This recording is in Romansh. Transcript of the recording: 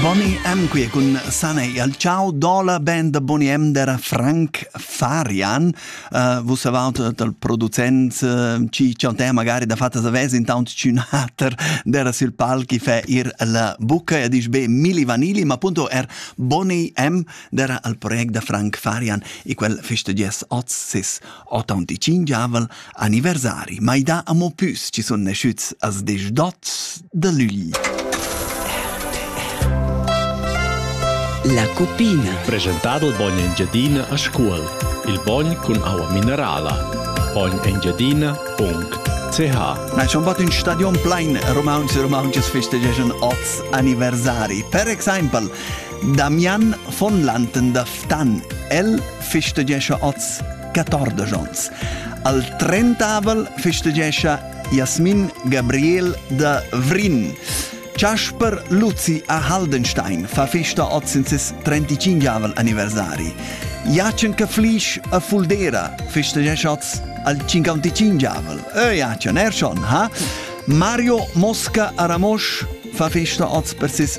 Boni M qui cun Sanei al ciao do la band da Boni M der Frank Farian uh, vos avalt dal producent uh, ci chantè magari da fatta savez intant cun hater der sil pal chi fe ir la bucca e dice be Milli Vanilli ma punto er Boni M der al project da Frank Farian e quel feste ges oz sis Ottaunt il tschingiavel anniversari mai dà amo püs chi sun naschüts als desch dots da lügl. La cuppina. Presentà dal bogn Engiadina a Scuol. Il bogn cun aua minerala. bognengiadina.ch Na schon bat ün stadion plain Romauns e Romaunches festegiajan oz anniversari. Per exaimpel Damian von Lanten da Ftan, el festegescha oz 14 ons. Al 30avel festegescha Jasmin Gabriel da Vrin. Chasper Luzi a Haldenstein fa festa oz in ses 35avel anniversari. Jacen Caflisch a Fuldera festegescha oz al 55avel. Ö Jacen, er schon, ha? Mario Mosca a Ramosch fa festa oz per ses